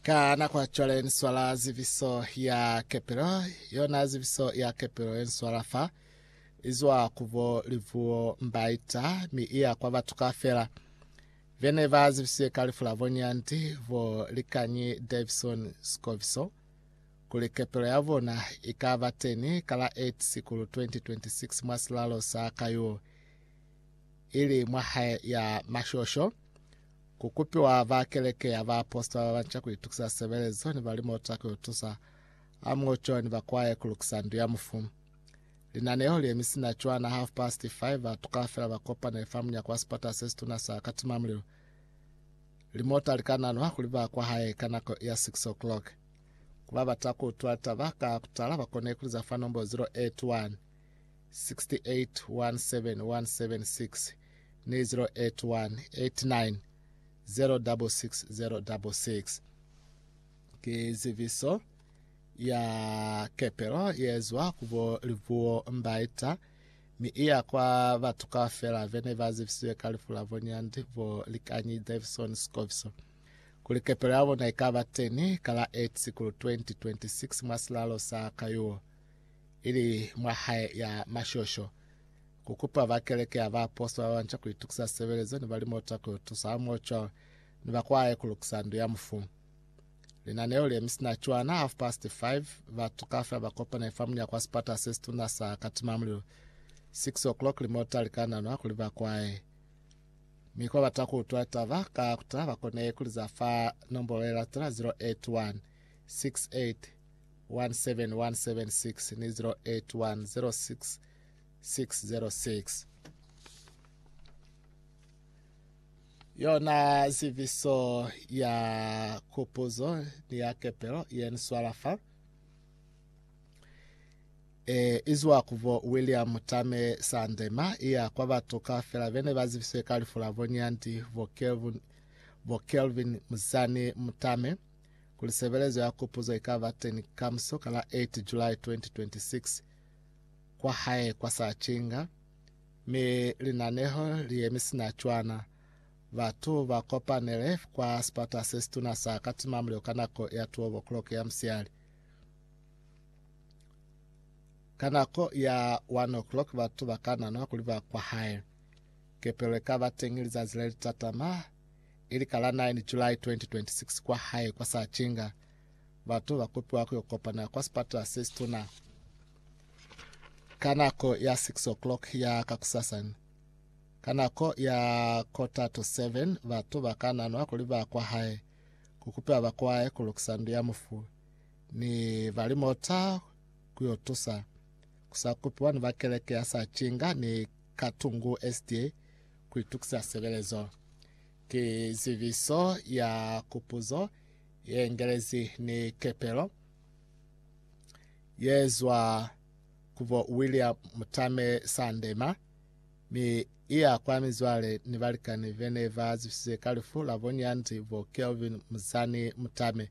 Ka nako ya cwale ni swala ziviso ya kepelo, yona ziviso ya kepelo ye nswala fa izwa kubo livuo mbaita mi iya kwa batu ka fela. Vene ba zivisiwe ka lifu la bonyandi bo likanyi Davison Scoviso kuli kepelo ya bona i ka ba teni ka la 8 Sikulu 2026 mwa silalo sa Kayuo ili mwa hae ya mashosho. Ku kupiwa ba Keleke ya Baapositola ba banca ku itukisa sebelezo ni balimota ku yo tusa Amoco ni bakwaye ku lukisa Ndu ya Mufu. Linaneho li emisi na cwana half past five, batu kaufela ba kopanile fa munyako wa sipata se situna sa Katimamulilo. Limota li ka nanwa kuli ba kwahae ka nako ya six o'clock. Ku ba bata ku utula taba ka kutala, ba kone ku liza fa nombo 081. 0817168081 Ki zibiso ya kepelo yezwa ku bo libuo mbaita mi iya kwa batu kaufela bene ba zibisiwe ka lifu la bonyandi bo likanyi Davison Scoviso kuli kepelo ya bona ikaba teni ka la 8 Sikulu 2026 mwa silalo sa Kayuo. ili mwa hae ya mashosho, ku kupa ba keleke ya baapositola ba banca ku itukisa sebelezo ni balimota ku yo tusa hamoho cwalo ni ba kwae ku lukisa ndu ya mufu. Linaneo le mi si na cwana half past five, batu kaufela ba kopane fa munyako wa sipata se situna sa Katimamulilo. Six o'clock limota li ka nanwa kuli ba kwae, mi kwa bata ku utwa litaba ka kutala ba kone ku liza fa nombolo ye latela 081 68 17176 ni 08106606. Yona ziviso ya kupuzo ni ya kepelo ye ni swala fa e izwa kuvo William Tame Sandema iya kwa batu ka fela bene ba ziviswe ka lifu la bonyandi bo Kelvin, bo Kelvin Muzani Mutame kuli sebelezo ya kupuzo ikaba teni kamuso ka la 8 July 2026 kwa hae kwa Sachinga, mi linaneho li yemi sina cwana. Batu ba kopanele kwa sipata se situna sa Katima Mulilo ka nako ya 12 o'clock ya musiali. Ka nako ya 1 o'clock batu ba ka nanwa kuli ba kwa hae. Kepelo ikaba teñi lizazi le litatama ili ka la 9 July 2026 kwa hae kwa Sachinga. Batu ba kopiwa ku yo kopana kwa sipatala se situna ka nako ya 6 o'clock ya kakusasa. Ka nako ya quarter to 7 batu ba ka nanwa kuli ba kwa hae ku kupiwa ba kwae ku lukisa ndu ya mufu ni ba limota ku yo tusa ku sa kupiwa ni ba keleke ya Sachinga ni Katungu SDA Ku itukisa sebelezo ki zibiso ya kupuzo ye ngelezi ni kepelo ye zwa ku bo William Mutame Sandema, mi iya kwa mizwale ni balikani bene ba zwisize ka lifu la bo Nyanzi bo Kelvin Muzani Mutame,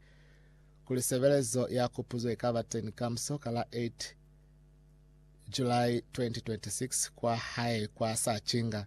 kuli sebelezo ya kupuzo ikaba teni kamuso ka la 8 July 2026 kwa hae kwa Sachinga.